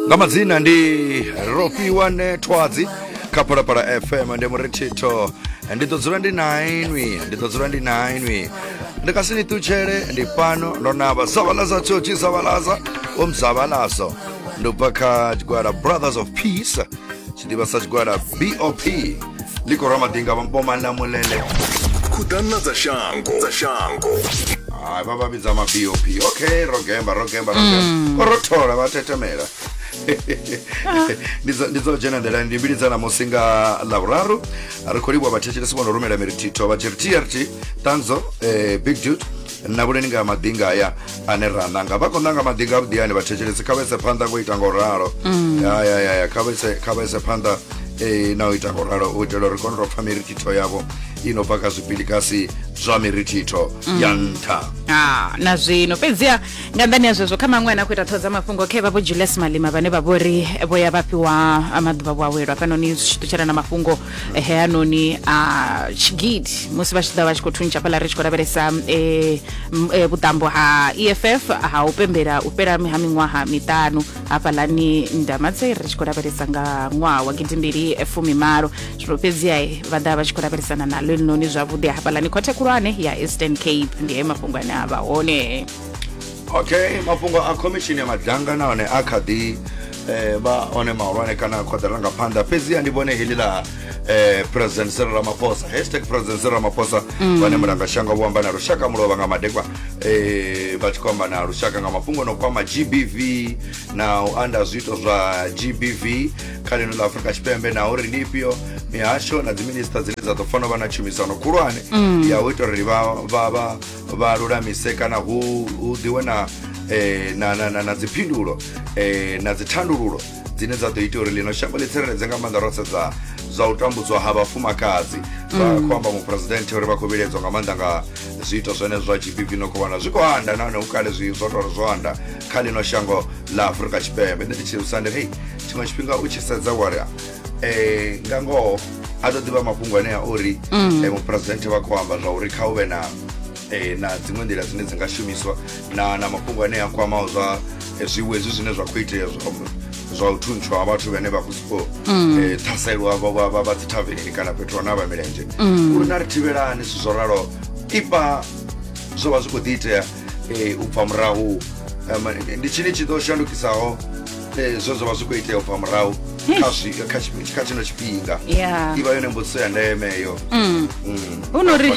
nga madzina ndi rofhiwa nethwadzi kha phalaphala fm ndi muri thitho ndi ḓo dzula ndi nainwi ndi ḓo dzula ndi nainwi ndi ka si ni ṱutshele ndi fhano ndo navha zavalaza tshothi zavalaza omzavalazo ndi bva kha tshigwada brothers of peace tshidiba sa tshigwada bop ndi khou rwa madinga vhomana mulele khuḓana dza shango dza shango hai vha vha vhidza ma bop okay ro gemba ro gemba ro gemba mm. ko ro thola vha tetemela ndi dzo dzhena nḓilani ndi mbili dza namusi nga lavhuraru ri khou livhuwa vhathetshelesi vho no rumela mirithitho vha tshi ri trt tanzo eh, big dude nabuleni nga madinga aya ane ra nanga vha khou nanga madinga avhuḓi ane vhathetshelesi kha vhese phanḓa ngo ita ngo ralo mm. ya ya ya ya kha vhese kha vhese phanḓa e na u ita ngo ralo u itela uri kone ro pfa mirithitho yavho i no bva kha zwipilikasi zwa mirithitho mm. ya nṱha ah, na zwino fhedziha nga nḓani ya zwezwo kha maṅwe ane a khou ita ṱhoho dza mafhungo khe vha vho julius malima vhane vha vho ri vho ya vha fhiwa maḓuvha vhuawelwa fhanoni zwi tshi ṱutshela na mafhungo ehe hanoni a tshigidi musi vha tshi ḓa vha tshi khou thuntsha fhaḽa ri tshi khou lavhelesa eh, m- eh, vhuṱambo ha eff ha u pembela u fhela ha miṅwaha miṱanu hafhaḽani ndamatse ri tshi khou lavhelesa nga ṅwaha wa gidimbili fumi malo zwino fhedziha eh, vha ḓa vha tshi khou lavhelesana naḽo elinoni zwavhuḓi hafhaḽani khothe khulwane ya eastern cape ndi he mafhungo ane a vha hone okay mafhungo a khomishini ya madanga nahone a kha ḓi eh, vha one mahulwane kana khoḓela nga phanḓa fhedziha ndi vhone heḽi ḽa eh, president sero ramaphosa hashtag president sero ramaphosa mm. vhane mulanga shango vho amba na lushaka mulovha nga madekwa eh, vha tshi khou amba na lushaka nga mafhungo no kwama gbv na u anda zwiito zwa gbv kha lino ḽa afurika tshipembe na uri ndi ifhio mihasho na dziminista dzine dza ḓo fanela vha na tshumisano khulwane mm. ya u ita uri vha vha lulamise kana hu hu ḓiwe na eh, na na na, na dziphindulo eh, na dzithandululo dzine dza ḓo ita uri ḽino shango ḽi tsireledze nga maanḓa ro sedza zwa u tambudzwa ha vhafumakadzi vha khou amba muphuresidenthe uri vha khou vhiledzwa nga maanḓa nga zwiito zwenezwo zwa gbv no khou wana zwi khou anda nahone hu kale zwi zwo tou zwo anda kha ḽino shango ḽa afurika tshipembe nṋe ndi tshi usa ndi ri hei tshiṅwe tshifhinga u tshi sedza wari eh nga ngoho a to ḓivha mafhungo anea uri mm. eh, mupresidenthe vha khou amba zwa uri kha u vhe na eh, na dziṅwe nḓila dzine dzi nga shumiswa na na mafhungo ane a kwamaho zwa eh, zwiwo hezwi zwine zwa khou itea zwa u thuntshwa ha vhathu vhane vha khou sokou mm. eh, ṱhaselwa vha dzithavenini kana fhethu hone a vha milenzhe mm. uri na ri thivhelani zwithu zwo ralo ipa zwo vha zwi khou ḓi itea eh, u bva murahu ndi tshini tshi ḓo shandukisaho Eh, zwo zwa vha zwi khou itea ubva murahu kha zwi- kha tshi- kha tshino tshifhinga Yeah. i vha yone mbudziso ya ndeme eyo Mm. hu no ri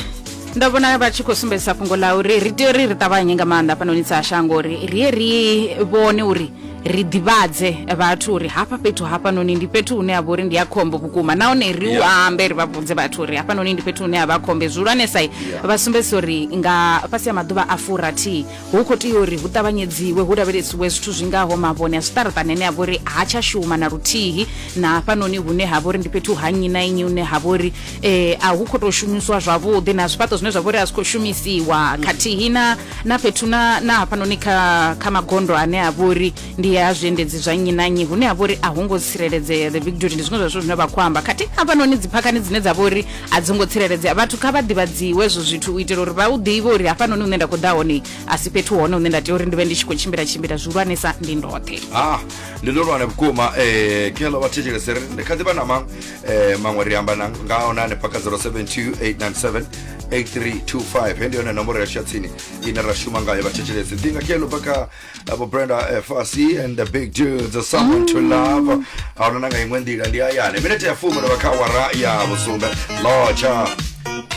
ndo vhona vha tshi khou sumbedzisa fhungo ḽa uri ri tea uri ri ṱavhanye nga maanḓa hafhanoni dza shango uri ri ye ri vhone uri ri ḓivhadze vhathu uri hafha fhethu hafhanoni ndi fhethu hune ha vha uri ndi ya khombo vhukuma nahone ri u Yeah. ambe ri vha vhudze vhathu uri hafhanoni ndi fhethu hune ha vha khombe zwihulwanesa Yeah. vha sumbedzisa uri nga fhasi ha maḓuvha a furathihi Hu khou tea uri hu ṱavhanyedziwe hu lavhelesiwe zwithu zwi ngaho mavhone a zwiṱaraṱani ane a vha uri ha tsha shuma na luthihi na hafhanoni hune ha vha uri ndi fhethu ha nnyi na nnyi hune ha vha uri eh, a hu khou tou shumiswa zwavhuḓi na zwifhaṱo zwine zwa vha uri a zwi khou shumisiwa khathihi na na fhethu na na hafhanoni kha kha magondo ane a vha uri ndi ya zwiendedzi zwa nnyi na nnyi hune ha vha uri a hu ngo tsireledzea the victory ndi zwiṅwe zwa zwithu zwine vha khou amba khathihi hafhanoni dziphakhani dzine dza vha uri a dzi ngo tsireledzea vhathu kha vha ḓivhadziwe hezwo zwithu u itela uri vha u ḓivhe uri hafhanoni hune nda khou ḓa hone a si fhethu hone hune nda tea uri ndi vhe ndi tshi khou tshimbila tshimbila zwihulwanesa ndi ndoṱhe ah ndi ndo lwana vhukuma eh kelo vha thetshelese ri ndi kha ḓi vha na maṅwe eh maṅwe ri amba na nga ona ne paka 072897 8325 hendi yone nomboro ya tsini ine ra shuma ngayo vha thetshelese ḓi nga kelo paka abo brenda fc and the big dudes someone to love aonana nga iṅwe nḓila ndi hayani minete ya fumi ndo vha kha awara ya vhusumbe lotsha